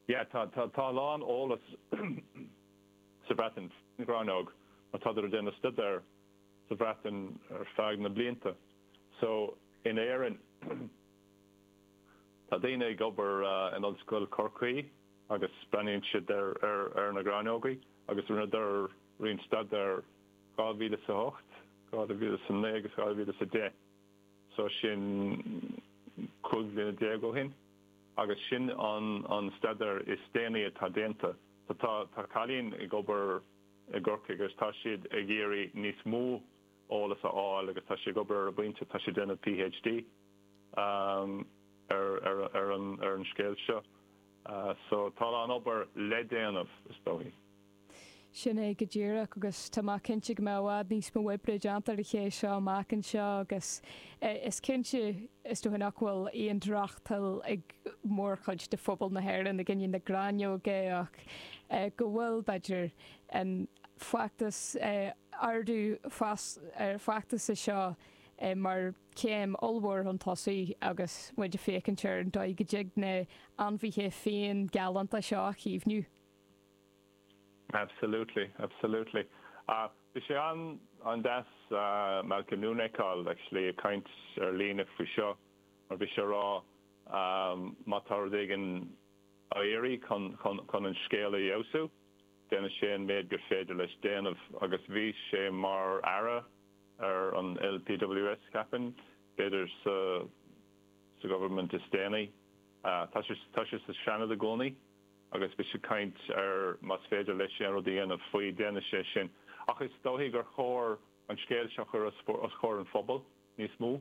Yeah, tá, tá a lán eolas sa Bhreatain faoin ghráinneog mar tádar ag déanamh staidéir sa Bhreatain ar feadh na blianta. So, in Éirinn, tá daoine ag obair in Ollscoil Chorcaí agus breathnaíonn siad ar, ar, ar na gráinneogaí agus rinneadar roinnt staidéir 2008, 2009 agus 2010. So, sin cúig bhliana déag ó shin. agus sin an staidéar is déanaí atá déanta. Tá cailín ag obair i gCorcaigh agus tá siad ag iarraidh níos mó eolas a fháil agus tá sí ag obair ar an bpointe, tá sí ag déanamh PhD ar an scéal seo. So tá a lán obair le déanamh is dóigh. Sin é go díreach, agus tá mé cinnte go mbeidh i bhfad níos mó oibre déanta ar an scéal seo amach anseo agus is cinnte, is dóigh, nach bhfuil aon drochthoil ag mórchuid de phobal na hÉireann i gcoinne na gráinneoige ach go bhfuil, b'fhéidir, an feachtas, ardú feasachta seo mar chéim ollmhór chun tosaigh agus muid ag féachaint ar an dóigh go dtig na hainmhithe fiáin galánta seo a chaomhnú. Absolutely, absolutely. Bhí sé an-deas Malcolm Noonan a fheiceáil actually ag caint ar líne faoi seo mar bhí sé ag rá má tá rud éigin ag iarraidh chun an scéal a fheabhsú, déanann sé an méid gur féidir leis déanamh agus bhí sé mar Aire ar an NPWS, ceapaim, b'fhéidir sa Government is déanaí. Tá sé sa Seanad i gcónaí. agus bhí sé ag caint ar más féidir leis aon rud a dhéanamh faoi, déanfaidh sé sin. Ach is dóichí gur chóir an scéal seo a chur os comhair an phobail níos mó.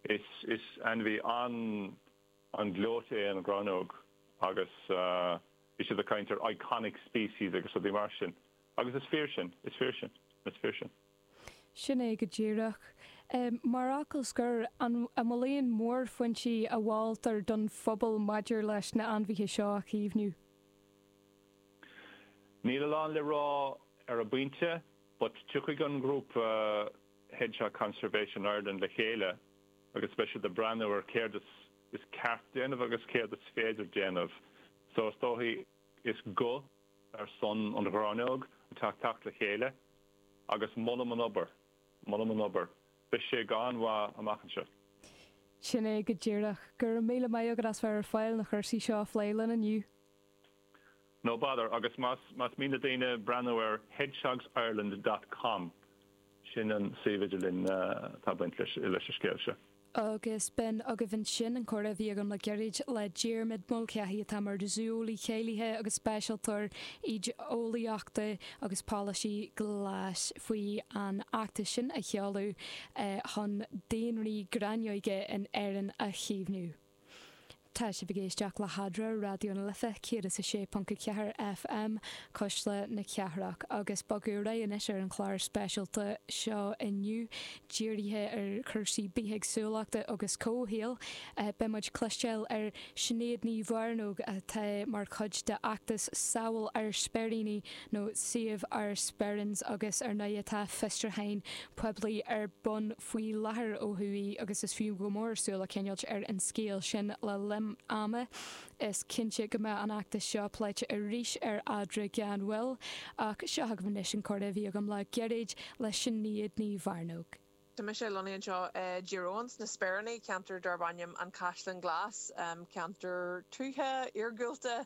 Is ainmhí an-ghleoite é an ghráinneog agus bhí siad ag caint ar iconic species agus rudaí mar sin. Agus is fíor sin. Is fíor sin. Is fíor sin. Sin é go díreach. Mar fhocal scoir, an bhfuil aon mhórphointí a mholtar don phobal maidir leis na ainmhithe seo a chaomhnú? Níl a lán le rá ar an bpointe, but tiocfaidh an grúpa Hedgehog Conservation Ireland le chéile agus beidh siad ag breathnú ar céard is is ceart déanamh agus céard is féidir déanamh. So is dóigh is go. ar son an ghráinneog atá ag teacht le chéile agus molaim an obair, molaim an obair. Beidh sé an-mhaith amach anseo. Sin é go díreach. Go raibh míle maith agat as bheith ar fáil leis na cúrsaí seo a phlé linn inniu. No bother. Agus más mian le daoine breathnú ar hedgehogsireland dot com, sin an suíomh idirlín atá ag baint leis an scéal seo. agus b'in agaibh ansin an comhrá a bhí agam le gairid le Diarmuid Mulcahy atá mar Zó-eolaí Cáilithe agus Speisialtóir Éiceolaíochta agus Polasaí Ghlais faoi an fheachtas sin a seoladh chun daonraí gráinneog in Éirinn a chaomhnú. Tá sibh ag éisteacht le hAdhradh ar Raidió na Life 106.4 FM, Cuisle na Cathrach, agus ag bogadh ar aghaidh anois ar an chlár speisialta seo inniu dírithe ar chúrsaí bithéagsúlachta agus comhshaoil. Beidh muid ag cloisteáil ó Shinéad Ní Mhearnóg atá mar chuid de fheachtas Sábháil Ár Speiríní nó Save Our Sperrins agus ar ndoigh atá fiosrúchán poiblí ar bun faoi láthair ó thuaidh agus is fiú go mór súil a choinneáilt ar an scéal sin le himeacht ama. Is cinnte go mbeidh an fheachtas seo pléite arís ar Adhradh gan mhoill ach seo agaibh anois an comhrá a bhí agam le gairid le Sinéad Ní Mhearnóg. Tá mise lonnaithe anseo i dTír Eoghain sna Speiríní, ceantar darb ainm An Caisleán Glas, ceantar tuaithe, iargúlta,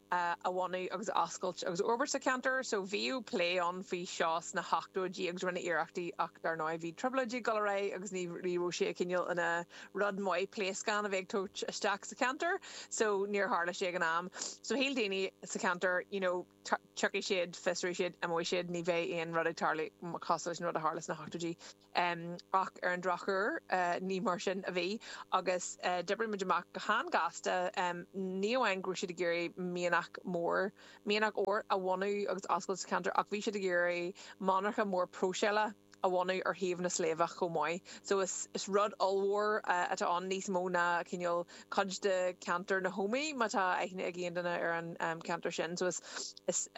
a bhunú agus a oscailt agus a fhorbairt sa cheantar so. Bhíodh plé ann faoi seo sna hochtóidí agus rinneadh iarrachtaí ach dar ndóigh bhí trioblóidí ag dul ar aghaidh agus ní raibh sé ag cineál ina rud maith pléascáin a bheith ag tabhairt isteach sa cheantar so níor tharla sé ag an am. So shíl daoine sa cheantar you know tiocfaidh siad, fiosróidh siad, imeoidh siad, ní bheidh aon rud ag tarlú cosúil leis an rud a tharla sna hochtóidí. Ach ar an drochuair, ní mar sin a bhí agus d'oibrigh muid amach go han-ghasta, ní amháin go raibh siad ag iarraidh mianach mór, mianach óir a bhunú agus a oscailt sa cheantar ach bhí siad ag iarraidh monarcha mór próiseála a bhunú ar thaobh na sléibhe chomh maith. So is rud ollmhór atá ann, níos mó ná cineál cuid de cheantar na hÓmaí má tá aithne ag aon duine ar an cheantar sin. So is.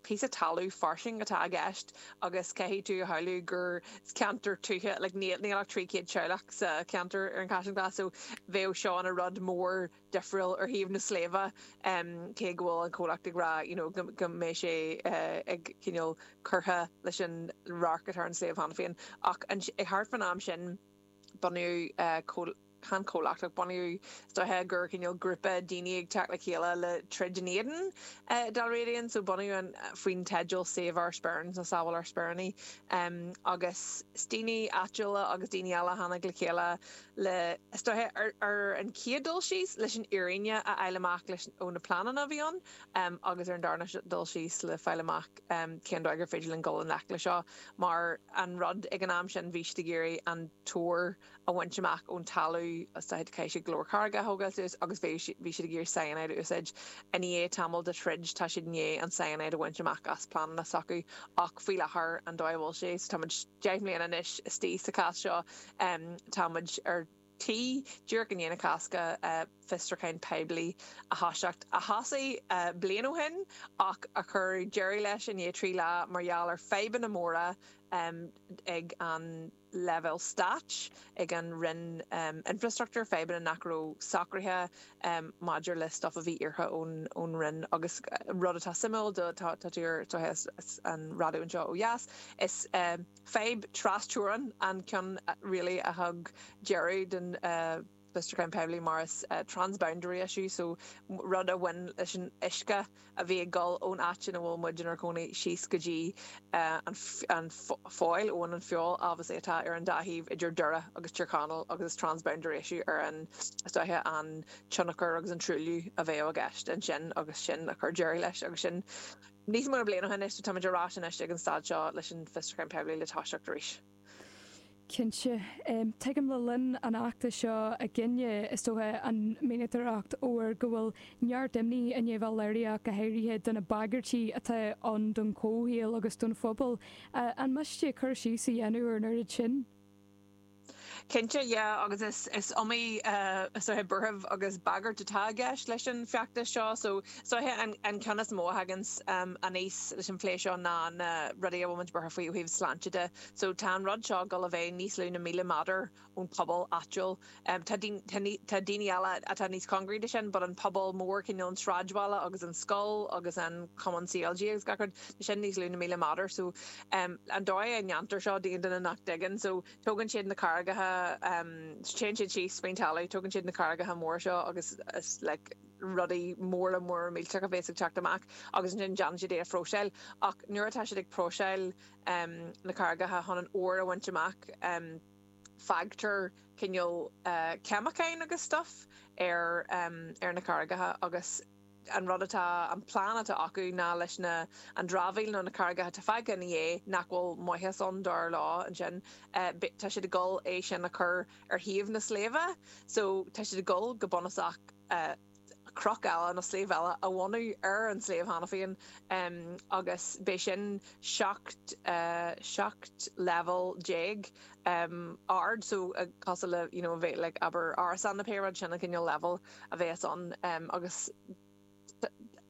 píosa talamh fairsing atá i gceist agus caithfidh tú a shamhlú gur ceantar tuaithe like níl ach 300 teaghlach sa cheantar ar an Chaisleán Ghlas so bheadh seo ina rud mór difriúil ar thaobh na sléibhe em cé go bhfuil an comhlacht ag rá you know go go mbeidh sé eh ag cineál curtha leis an radharc atá ar an sliabh cheana féin ach thart fán am sin bunaíodh eh Chan comhlacht ach bunaíodh is dóiche gur cineál grúpa daoine ag teacht le chéile le troid in éadan Dalradian, so bunaíodh an faoin teideal Save Our Sperrins nó Sábháil Ár Speiríní agus is daoine áitiúla agus daoine eile a tháinig le chéile le, is dóiche, ar an chéad dul síos leis an fhírinne a fháil amach leis ó na pleananna a bhí ann agus ar an darna dul síos le fáil amach cén dóigh gur féidir linn dul i ngleic le seo mar an rud ag an am sin bhí siad ag iarraidh an t-ór a bhaint amach ón talamh is dóiche caithfidh siad go leor carraige a thógáil suas agus bhí bhí siad ag iarraidh cyanide a úsáid. I ndiaidh tamaill de throid tá siad i ndiaidh an cyanide a bhaint amach as pleananna s'acu ach faoi láthair an dóigh a bhfuil sé so tá muid deich mbliana anois istigh sa chás seo tá muid ar tí díreach i ndiaidh na Cásca fiosrúchán poiblí a thoiseacht a thoisigh bliain ó shin ach a chuir deireadh leis i ndiaidh trí lá mar gheall ar fadhbanna móra ag an leibhéal Stáit, ag an Roinn Infreastruchtúir, fadhbanna nach raibh socraithe maidir le stuif a bhí iarrtha ón Roinn. Agus rud atá suimiúil do, tá tú ar an raidió anseo ó dheas, is fadhb trasteorann an ceann really a thug deireadh don, fiosrúchán poiblí mar is transboundary issue so rud a bhain leis an uisce a bhí ag dul ón áit ina bhfuil muid inár gcónaí síos go dtí an Foyle abhainn an Feabhail obviously atá ar an dá thaobh idir Doire agus Tír Chonaill agus is transboundary issue ar an is dóiche an tionchar agus an truailliú a bheadh i gceist ansin agus sin a chuir deireadh leis agus sin níos mó na bliain ó shin anois so tá muid ar ais anois ag an staid seo leis an fiosrúchán poiblí le toiseacht arís. Cinnte, tuigim le linn an fheachtais seo i gcoinne, is dócha, an mhianadóireacht óir go bhfuil neart imní i ndiaidh bheith léirithe go háirithe do na bagairtí atá ann don chomhshaol agus don phobal. An miste cur síos a dhéanamh ar an oiread sin? Cinnte, yeah, agus is iomaí is dóiche buaireamh agus bagairt atá i gceist leis an bhfeachtas seo, so. Sea, an ceann is mó a thaganns aníos leis an phlé seo ná na rudaí a bhfuil muid buartha faoi ó thaobh sláinte de. So, tá an rud seo ag dul a bheith níos lú na míle méadar ón bpobal áitiúil. Tá daoine eile atá níos cóngaraí do sin but an pobal mór, cineál an sráidbhaile agus an scoil agus an cumann CLG agus gach rud, tá sin níos lú na míle méadar. So, an dóigh a ndéantar seo d'aon duine nach dtuigeann, so, tógann siad na carraigeacha, téann siad síos faoin talamh, tógann siad na carraigeacha móra seo agus is like, rudaí móra móra millteach a bhéas ag teacht amach agus ansin déanann siad é a phróiseáil ach nuair atá siad ag próiseáil na carraigeacha chun an ór a bhaint amach fágtar cineál ceimiceáin agus stuff ar ar na carraigeacha agus an rud atá an plean atá acu ná leis na an dramhaíl nó na carraigeacha atá fágtha ina dhiaidh nach bhfuil maitheas ann dar leo ansin beidh tá siad ag dul é sin a chur ar thaobh na sléibhe, so tá siad ag dul go bunúsach cnoc eile nó sléibh eile a bhunú ar an sléibh cheana féin agus beidh sin seacht, seacht leibhéal déag ard, so cosúil le, you know, a bheith like abair árasán nó pé rud, sin an cineál leibhéal a bheas ann agus.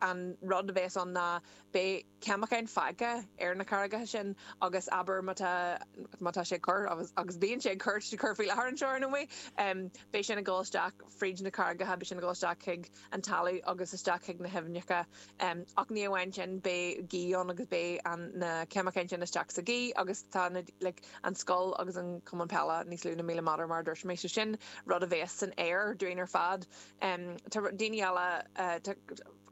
an rud a bheas ann ná beidh ceimiceáin fágtha ar na carraigeacha sin agus abair má tá, má tá sé ag cur agus bíonn sé ag cur, tá sé ag cur faoi láthair anseo ar ndóigh, beidh sin ag dul isteach fríd na carraigeacha, beidh sin ag dul isteach chuig an talamh agus isteach chuig na haibhneacha ach ní amháin sin beidh gaoth ann agus beidh an, na ceimiceáin sin isteach sa ghaoth agus tá na, like, an scoil agus an cumann peile níos lú na míle méadar mar a dúirt mé so sin rud a bheas san aer dúinn ar fad. Tá daoine eile, tá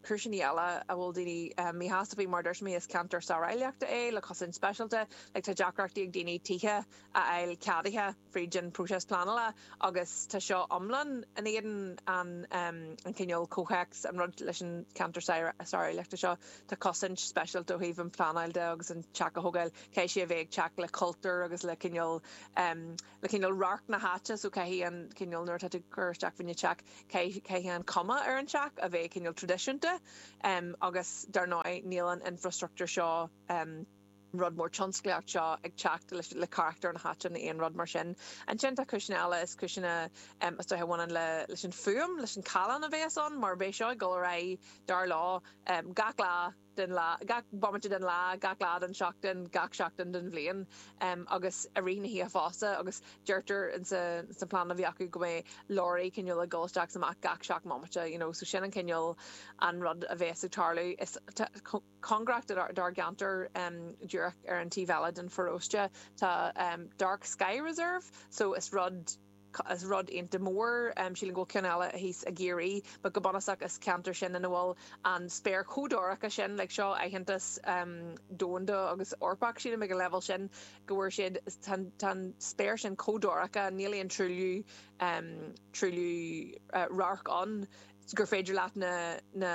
cúiseanna eile a bhfuil daoine míshásta faoi. Mar a dúirt mé, is ceantar sáráilleachta é le cosaint speisialta. Tá deacrachtaí ag daoine tithe a fháil ceadaithe fríd an próiseas pleanála agus tá seo iomlán in éadan an cineál comhthéacs, an rud leis an cheantar sáráilleachta seo, tá cosaint speisialta ó thaobh an phleanáil de agus an teach a thógáil, caithfidh sé a bheith ag teacht le cultúr agus le cineál, le cineál radharc na háite, so caithfidh an cineál, nuair atá tú ag cur isteach fá choinne teach, caithfidh, caithfidh an cuma ar an teach a bheith cineál traidisiúnta agus dar ndóigh níl an infreastruchtúr seo, an rud mór tionsclaíocht seo ag teacht leis, le carachtar na háite ná aon rud mar sin. Ansin tá cúiseanna eile, is cúiseanna is dóiche a bhaineann le, leis an fuaim, leis an callán a bhéas ann mar beidh seo ag dul ar aghaidh, dar leo, gach lá, den lá, gach bomaite den lá, gach lá den tseachtain, gach seachtain den bhliain agus i rith na hoíche fosta agus deirtear sa plean a bhí acu go mbeadh leoraí cineál ag dul isteach is amach gach seacht mbomaite you know so sin an cineál an rud a bhéas ag tarlú is tá cóngarach dár gceantar díreach ar an taobh eile den pharóiste tá dark sky reserve so is rud is rud iontach mór. Sílim go bhfuil ceann eile thíos i gCiarraí, but go bunúsach is ceantar sin ina bhfuil an spéir chomh dorcha sin, like seo aitheantas domhanda agus Eorpach, sílim ag an leibhéal sin go bhfuair siad, tá an spéir sin chomh dorcha, níl aon truailliú, truailliú radhairc ann gur féidir leat na, na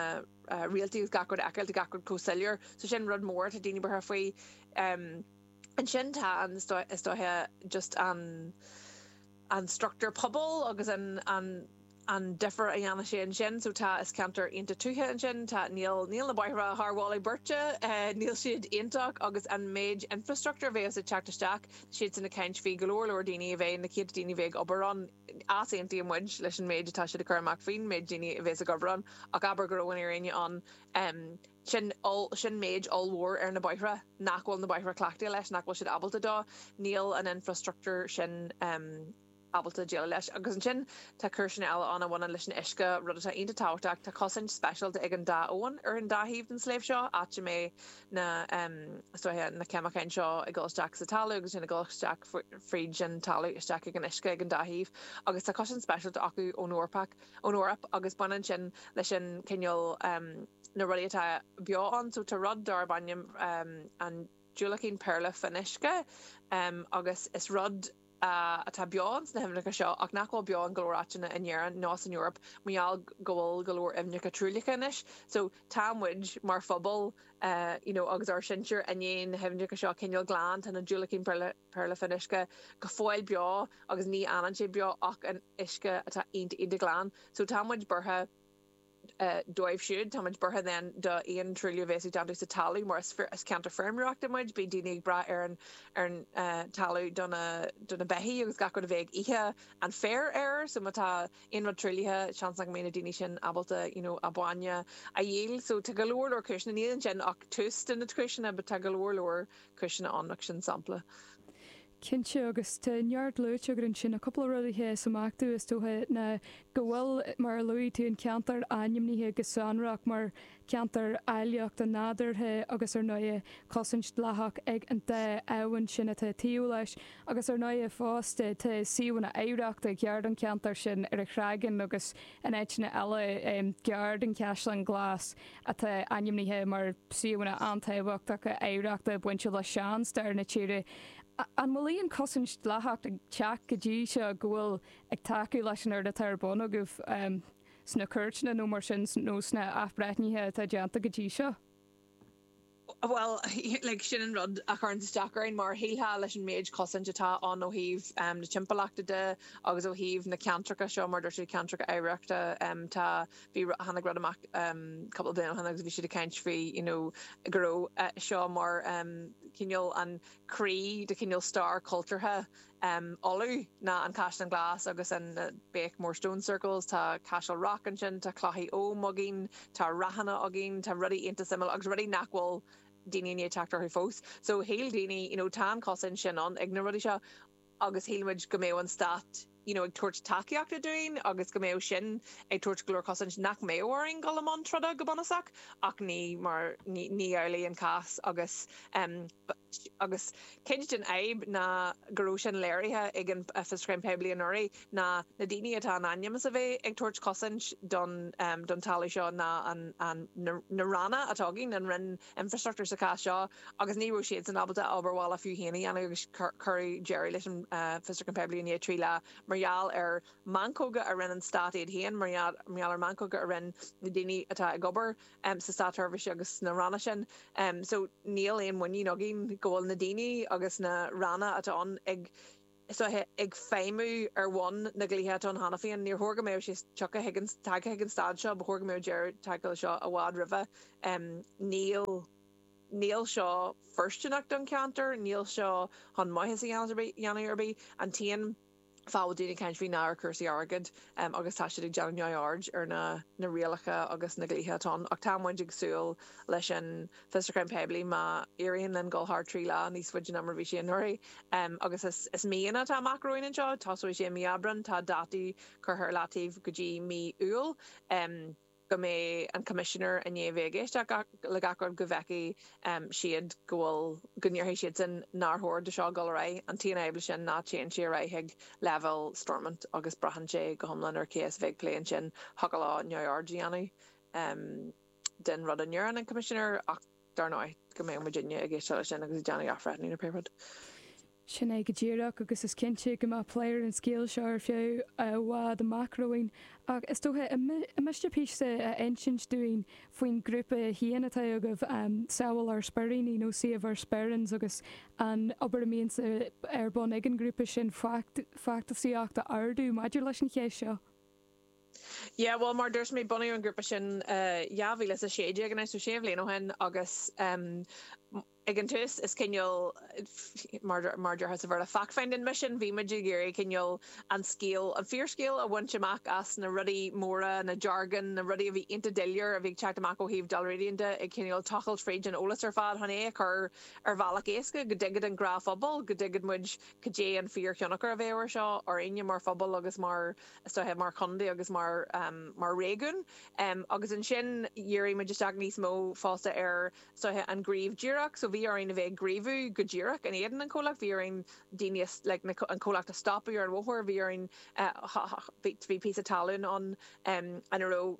réaltaí agus gach rud a fheiceáilt, gach rud chomh soiléir. So sin rud mór atá daoine buartha faoi. Ansin tá an, is dóiche, just an an struchtúr pobail agus an an an difear a dhéanfaidh sé ansin. So tá, is ceantar iontach tuaithe ansin, tá, níl níl na bóithre thar mholadh beirte, níl siad iontach agus an méid infreastruchtúir a bhéas ag teacht isteach, siadsan ag caint faoi go leor leor daoine a bheith, na céadta daoine a bheith ag obair ann, easaontaíonn muid leis an méid atá siad ag cur amach faoin méid daoine a bhéas ag obair ann ach abair go raibh an fhírinne ann, sin, sin méid ollmhór ar na bóithre nach bhfuil na bóithre cleachtaithe leis, nach bhfuil siad ábalta dó, níl an infreastruchtúr sin ábalta déileáil leis. Agus ansin tá cúiseanna eile ann a bhaineann leis an uisce, rud atá iontach tábhachtach. Tá cosaint speisialta ag an dá abhainn ar an dá thaobh den sléibhte seo, áit a mbeidh na, is dóiche, na ceimiceáin seo ag dul isteach sa talamh agus ansin ag dul isteach fríd an talamh isteach ag an uisce ag an dá thaobh. Agus tá cosaint speisialta acu ón Eorpach. ón Eoraip agus baineann sin leis an cineál na rudaí atá beo ann so tá rud darb ainm an diúilicín péarla fionnuisce agus is rud atá beo ann sna haibhneacha seo ach nach bhfuil beo in go leor áiteanna in Éirinn ná san Eoraip mar gheall go bhfuil go leor aibhneacha truaillithe anois so tá muid mar phobal you know agus ár sinsir i ndiaidh na haibhneacha seo a choinneáil glan tá na diúilicín péarla Péarla Fionnuisce go fóill beo agus ní fhanann sé beo ach in uisce atá iontach iontach glan. So tá muid buartha dóibh siúd. Tá muid buartha then do aon truailliú a bhéas déanta sa talamh mar is is ceantar feirmeoireachta muid. Bíonn daoine ag brath ar an ar an talamh do na do na beithigh agus gach rud a bheith ag ithe an féir air. So má tá aon rud truaillithe seans nach mbeidh na daoine sin ábalta you know a bainne a dhíol. So tá go leor leor cúiseanna. Níl ansin ach tús de na cúiseanna but tá go leor leor. cúiseanna ann ach sin sampla. cinnte agus tá neart luaite agat ansin. Tá cúpla rud a sheas amach domh is dócha ná go bhfuil, mar a luaigh tú, an ceantar ainmnithe go sonrach mar cheantar áilleachta nádúrtha agus ar ndóighe cosaint dleathach ag an dá abhainn sin atá taobh leis agus ar ndóighe fosta tá suíomhanna oidhreachta gar don cheantar sin ar an Chreagán agus In áiteanna eile, gar don Chaisleán Glas, atá ainmnithe mar suíomhanna an-tábhachtacha oidhreachta bainte le seanstair na tíre, an bhfuil aon chosaint dleathach ag teacht go dtí seo go bhfuil ag tacú leis an rud atá ar bun agaibh sna cúirteanna nó mar sin nó sna athbhreithnithe atá déanta go dtí seo? Bhuel, like, sin an rud a chuireann isteach orainn, mar a shílfeá leis an méid cosaint atá ann ó thaobh na timpeallachta de agus ó thaobh na ceantracha seo, mar a dúirt siad, ceantracha oidhreachta. Tá, bhí, tháinig rud amach cúpla bliain ó shin agus bhí siad ag caint faoi, you know, go raibh seo mar cineál an croí de chineál stair cultúrtha, um Uladh ná an Caisleán Glas agus an Beaghmore stone circles tá Cashel Rock ansin tá clochaí Ogham againn tá ráthanna againn tá rudaí iontach suimiúla agus rudaí nach bhfuil daoine i ndiaidh teacht orthu fós so shíl daoine you know tá an cosaint sin ann ag na rudaí seo agus shíl muid go mbeadh an stát you know ag tabhairt tacaíochta dúinn agus go mbeadh sin ag tabhairt go leor cosaint nach mbeadh orainn dul i mbun troda go bunúsach ach ní mar ní amhlaidh an cás agus um agus cuid den fhadhb ná go raibh sin léirithe ag an Fiosrúchán Poiblí anuraidh, ná na daoine atá in ainm is a bheith ag tabhairt cosaint don talamh seo ná na Ranna atá againn, an Roinn Infreastruchtúr sa chás seo, agus ní raibh siadsan ábalta a obair bhaile fiú féin a dhéanamh agus cuireadh deireadh leis an Fiosrúchán Poiblí i ndiaidh trí lá mar gheall ar mheancóga a rinne an Stát iad féin, mar gheall ar mheancóga a rinne na daoine atá ag obair i sa Státseirbhís agus sna Ranna sin um so níl aon muinín againn go bhfuil na daoine agus na Ranna atá ann ag feidhmiú ar bhonn na dlíthe atá ann cheana féin. Níor chóir go mbeadh sé tioctha chuig an tagtha chuig an staid seo, ba chóir go mbeadh deireadh tagtha leis seo i bhfad roimhe. um Níl níl seo foirstineach don cheantar, níl seo chun maitheas a dhéanamh ar bith. An t-aon. fáth a bhfuil daoine ag caint faoi ná ar chúrsaí airgid agus tá siad ag déanamh neamhaird ar na rialacha agus na dlíthe atá ann. Ach tá muid ag súil leis an fhiosrúchán poiblí má éiríonn linn dul thar trí lá níos faide an uair seo ná mar a bhí sé anuraidh. Agus is míonna atá amach romhainn anseo, tosóidh sé i mí Aibreáin, tá dátaí curtha ar leataobh go dtí mí Iúil. go mbeidh an Coimisinéir i ndiaidh bheith ag éisteacht le gach rud go bhfeicfidh siad go bhfuil, go ndéarfaidh siadsan nár chóir do seo dul ar aghaidh. An t-aon fhadhb leis sin ná téann sé ar aghaidh chuig leibhéal Stormont agus braitheann sé go hiomlán ar cé a bheas ag plé leis sin, thiocfadh leo neamhaird a dhéanamh den rud a ndeireann an Coimisinéir ach. dar ndóigh, go mbeadh muidinne ag coinneáil suas leis sin agus ag déanamh athbhreithniú nó pé rud. Sin é go díreach, agus is cinnte go mbeidh plé ar an scéal seo ar feadh i bhfad amach romhainn, ach is dócha an miste píosa a insint dúinn faoin ghrúpa féin atá agaibh, Sábháil ár Speiríní nó Save Our Sperrins agus an obair a bíonns ar bun ag an ghrúpa sin feasacht a ardú maidir leis an cheist seo? Yeah, bhuel, mar a dúirt mé, bunaíodh an grúpa sin i 2016 anois, sé bhliain ó shin, agus ag an tús, is cineál, mar a dúrthá sa Bhéarla, fact-finding mission, bhí muid ag iarraidh cineál an scéal, an fíorscéal a bhaint amach as na rudaí móra, na jargon, na rudaí a bhí iontach doiléir a bhí ag teacht amach ó thaobh Dalradian de, ag cineál tochailt fríd an eolas ar fad chun é a chur ar bhealach éasca go dtuigfeadh an gnáthphobal, go dtuigfeadh muid cad é an fíorthionchar a bheadh air seo orainne mar phobal agus mar. mar chontae agus mar réigiún agus ansin dhírigh muid isteach níos mó fosta ar an gníomh díreach so bhí orainn a bheith ag gníomhú go díreach in éadan an chomhlacht, bhí orainn daoine a like an comhlacht a stopadh ar an bhóthar, bhí orainn bhí píosa talún ann ina raibh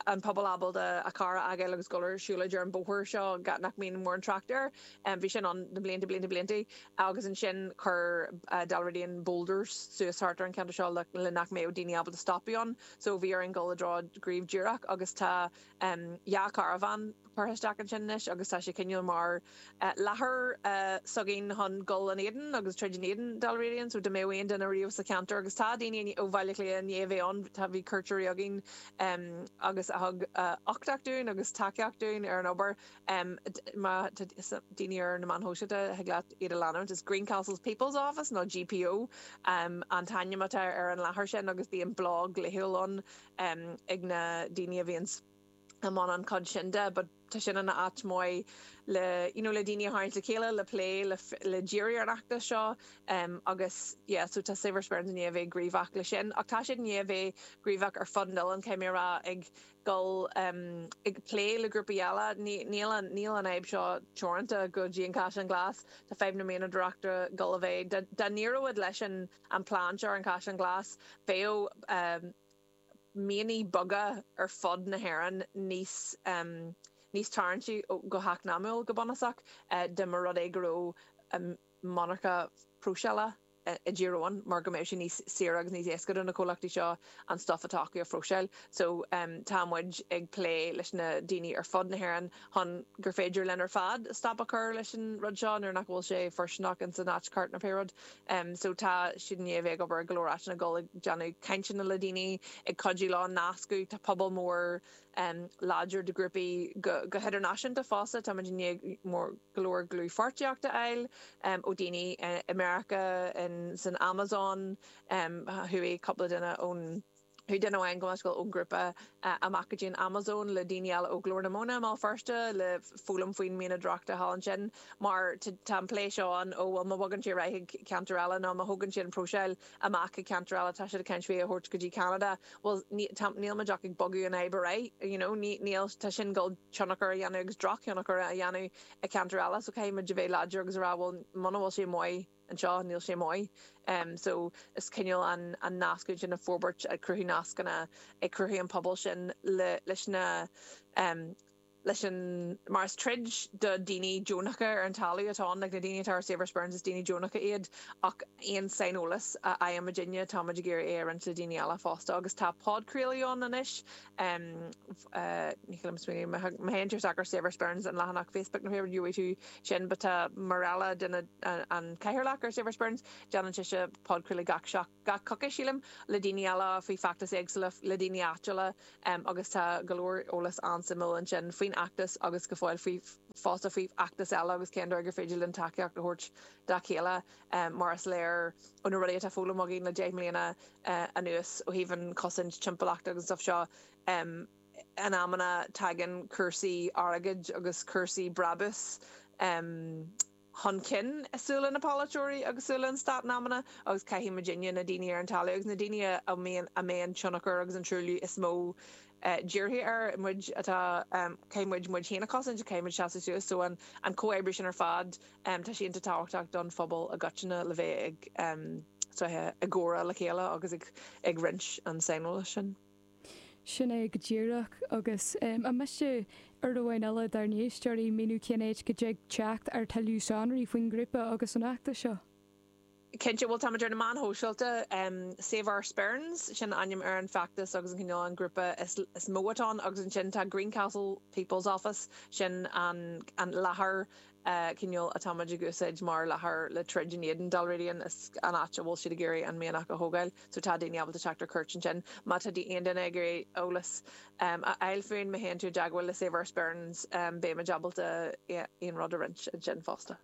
an pobal ábalta a charr a fhágáil agus dul ar siúlóid ar an bhóthar seo nach mbíonn mórán trácht air, bhí sin ann na blianta blianta blianta. agus ansin chuir Dalradian boulders suas thart ar an cheantar seo le nach mbeadh daoine ábalta stopadh ann so bhí orainn dul i dtreo gnímh díreach agus tá dhá charbhán curtha isteach ansin anois agus tá sé cineál mar láthair s'againn chun dul in éadan agus troid in éadan Dalradian so dá mbeadh aon duine riamh sa cheantar agus tá daoine ó Bhaile Átha Cliath i ndiaidh a bheith ann tá bhí cuairteoirí againn agus a thug uchtach dúinn agus tacaíocht dúinn ar an obair em má tá daoine ar na meáin shóisialta thig leat iad a leanúint is Greencastles People's Office nó GPO em an t-ainm atá ar an láthair sin agus bíonn blog laethúil ann em ag na daoine a bhíonn i mbun an chuid sin de but tá sin ina áit maith le you know le daoine a tharraingt le chéile le plé le le díriú ar an fheachtas seo em agus yeah so tá Save Our Sperrins i ndiaidh a bheith gníomhach leis sin ach tá siad i ndiaidh a bheith gníomhach ar fud an oileáin caithfidh mé a rá ag dul i bplé le grúpaí eile. Níl an fhadhb seo teoranta go dtí an Caisleán Glas, tá fadhb na mianadóireachta Gaillimhe. Dá n-éireoidh leis an plean seo ar an gCaisleán Glas, bheadh mianaigh beaga ar fud na hÉireann níos tarraingtí go heacnamúil, go bunúsach, dá mba rud é go raibh. monarcha próiseála i dTír Eoghain mar go mbeidh sé níos saoire agus níos éasca do na comhlachtaí seo an stuif atá acu a phróiseáil. So tá muid ag plé leis na daoine ar fud na hÉireann chun gur féidir linn ar fad stop a chur leis an rud seo nuair nach bhfuil sé fóirsteanach in san áit cheart nó pé rud. So tá siad i ndiaidh a bheith ag obair i go leor áiteanna ag dul ag déanamh cainteanna le daoine ag cuidiú leo nascadh. Tá pobal mór láidir de ghrúpaí go hidirnáisiúnta fosta. Tá muid i ndiaidh go leor dlúthpháirtíocht a fháil ó dhaoine i Meiriceá, san Amazon, chuaigh cúpla duine ó chuaigh duine amháin gabh mo leithscéal ón ngrúpa amach go dtí an Amazon le daoine eile ó Ghlór na Móna i mBéal Feirste le foghlaim faoin mianadóireacht thall ansin mar tá an plé seo ann, 'ó bhuel má bhogann sé ar aghaidh chuig ceantar eile nó má thógann siad an próiseáil amach i gceantar eile, tá siad ag caint faoi a thabhairt go dtí Ceanada. Bhuel, níl muid ach ag bogadh an fhadhb ar aghaidh, you know, níl, tá sin ag dul tionchar a dhéanamh agus drochthionchar a dhéanamh i gceantar eile so caithfidh muid a bheith láidir agus a rá bhuel muna bhfuil sé maith anseo, níl sé maith. So is cineál an an nascadh sin a fhorbairt, ag cruthú nascanna, ag cruthú an pobal sin le leis na. leis an mar is troid do daoine deonacha ar an talamh atá ann, like na daoine atá ar Save Our Sperrins is daoine deonacha iad ach aon saineolas a fhaighimid ó dhaoine táimid ag iarraidh é a roinnt le daoine eile fosta agus tá podchraoladh ann anois em ní thig liom smaoineamh má théann tú isteach ar Save Our Sperrins an leathanach Facebook nó whatever gheobhaidh tú sin but tá Marella duine an cathaoirleach ar Save Our Sperrins déanann sise podchraoladh gach seacht gach coicís, sílim, le daoine eile faoi feachtais éagsúla, le daoine áitiúla agus tá go leor eolas an-suimiúil ansin faoin fheachtas agus go fóill faoi fosta faoi fheachtais eile agus cén dóigh gur féidir linn tacaíocht a thabhairt dá chéile mar is léir ó na rudaí atá foghlamtha againn le deich mbliana anuas ó thaobh an chosaint timpeallachta agus an stuff seo in amanna tagann cúrsaí airgid agus cúrsaí brabús chun cinn i súile na polaiteoirí agus i súile an Stáit in amanna agus caithfidh muidinne na daoine ar an talamh agus na daoine a mbíonn a mbíonn tionchar agus an truailliú is mó dírithe ar muid atá caithfidh muid muid féin a chosaint so caithfidh muid seasamh suas so an an comhoibriú sin ar fad tá sé iontach tábhachtach don phobal i gcoitinne le bheith ag suí i gcomhrá le chéile agus ag ag roinnt an saineolais sin. Sin é go díreach. Agus an miste ar mhaithe le dár n-éisteoirí míniú cén áit go dtig teacht ar thuilleadh sonraí faoin ngrúpa agus an feachtas seo? Cinnte, bhuel, táimid ar na meáin shóisialta. Save Our Sperrins, sin ainm ar an bhfeachtas agus an cineál an grúpa is mó atá ann. Agus ansin tá Greencastle People's Office, sin an láthair. cineál atá muid ag úsáid mar láthair le troid in éadan Dalradian, is an áit a bhfuil siad ag iarraidh an mianach a thógáil, so tá daoine ábalta teacht ar cuairt ansin. Má tá aon duine ag iarraidh eolas a fháil fúinn, má théann tú i dteagmháil le Save Our Sperrins, beidh muid ábalta aon rud a roinnt ansin fosta.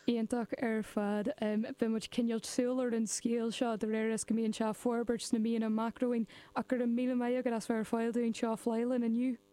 Iontach ar fad. Beidh muid ag coinneáil súil ar an scéal seo de réir is go mbíonn sé ag forbairt sna míonna amach romhainn, ach go raibh míle maith agat as bheith ar fáil dúinn anseo ar Fáilte inniu.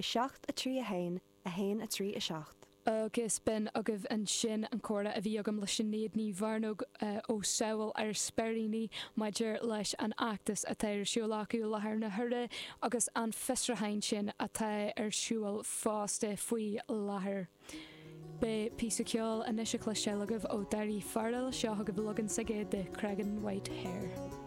7, 3, 1, 1, 3, 7. Agus b'in agaibh ansin an comhrá a bhí agam le Sinéad Ní Mhearnóg ó Sábháil Ár Speiríní maidir leis an fheachtas atá ar siúl acu i láthair na huaire agus an fiosrúchán sin atá ar siúl fosta faoi láthair. Beidh píosa ceoil anois le cloisteáil agaibh ó Daoirí Farrell, seo agaibh leagan s'aige de Creggan White Hare.